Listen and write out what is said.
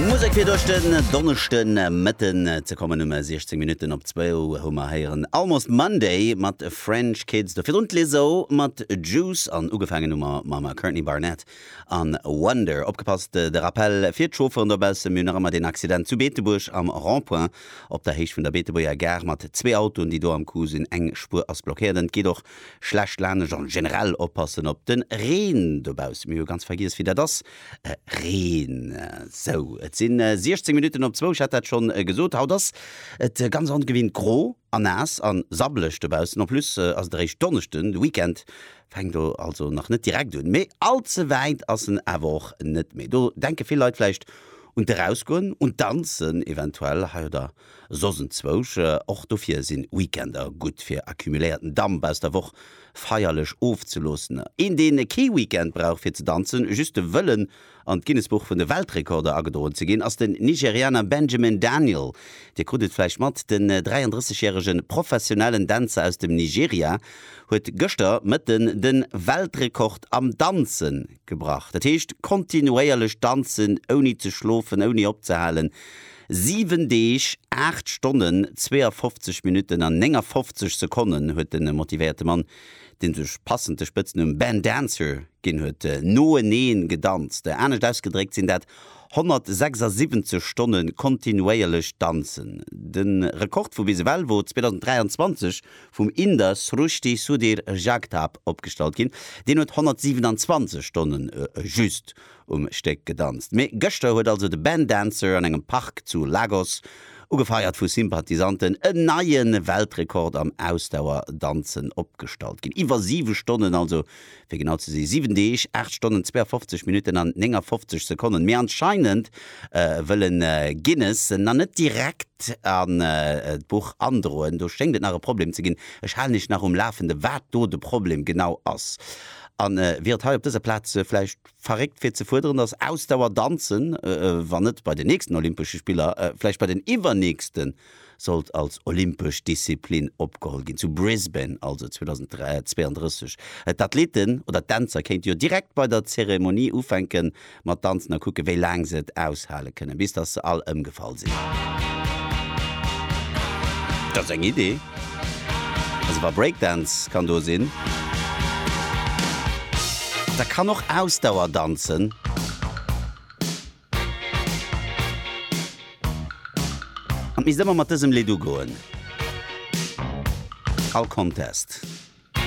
Musek fir duerch den Donneschde Mëtten ze kommen. Um 16 Minutten op zwou hu mer héieren Almost Monday mat French Kids, do virun d'Lizzo mat Juice an ugefaangen hu mer mam Courtney Barnett a Wonder. Opgepasst, de Rappell fir d'Chaufferen dobaussen, mir hunn nach ëmmer deen Accident zu Beetebuerg am Rond-point op der Héicht vun der Beetebuerger Gare mat zwee Autoen, déi do am Coup sinn. Eng Spuer ass blockéiert an et geet och schlecht lanescht. An generell oppassen op de Reen dobaussen, mir hu ganz vergiess wéi dat ass. Reen. Sou, et si 16 Minutten op zwou, ech hat dat schonn gesot. Haut ass et ganz ongewinnt gro a naass a sabbeleg dobaussen. En plus ass et eréischt Donneschden, de Weekend fänkt do also nach net direkt un. Mee all ze wäit ass en awer och net méi. Do denke vill Leit vläicht un d'Erausgoen, un d'Danzen eventuell hei oder soss enzwousch och. Dofir sinn Weekender gutt fir accumuléierten Damp aus der Woch feierlech ofzeloossen. Een deen kee Weekend brauch fir ze danzen, just de Wëllen an d'Guinnessbuch vun de Weltrekorder agedroen ze ginn, ass den Nigerianer Benjamin Daniel. Dir krut et vläicht mat, den 33 järege professionellen Dänzer aus dem Nigeria huet gëschter Mëtten de Weltrekord am Danze gebrach. Dat heescht kontinuéierlech danzen ouni ze schlofen, ouni opzehalen. Siwen Deeg, aacht Stonnen, 52 Minutten an 59 Sekonnen huet de motivéierte Mann, dee sech passend de Spëtznumm Ben Dancer ginn huet, noeneen gedanzt. Anescht ausgedréckt sinn dat 176 Stonne kontinuéierlech Danzen. De Rekord vu bis ewell wor 2023 vum Inder Srushti Sudhir Jagtap opgestallt ginn. Deen huet 127 Stonne just um Stéck gedanzt. Mee gëschter huet also de Ben Dancer an engem Park zu Lagos, ugefeiert vu Sympathisanten, en neie Weltrekord am Ausdauerdanzen opgestallt. Ginn iwwer 7 Stonnen, also fir genau ze si 7 Deeg, 8 Stonnen, 52 Minutten an 59 Sekonnen. Mee anscheinend wëll en Guinness en nach net direkt an d'Buch androen. Do schéngt et nach e Problem ze ginn. Ech halen iech nach um Lafende wat do de Problem genau ass. An wier et hei op dëser Plaz vläicht verréckt fir ze fuerderen, dass Ausdauer danzen, wann net bei den nächsten Olympesche Spiller, vläicht bei den iwwernächsten, sollt als olympesch Disziplin opgeholl ginn, zu Brisbane also 2032. D'Athleten oder d'Dänzer kéinte jo direkt bei der Zeremonie ufänke mat danzen a kucke wéi laang se et aushale kënnen, bis dass se all ëmgefall sinn. Dat ass eng Idee. Also wa Breakdance kann do sinn, da kann och Ausdauer danzen. An et misst ëmmer mat dësem Lidd ugoen, all Contest.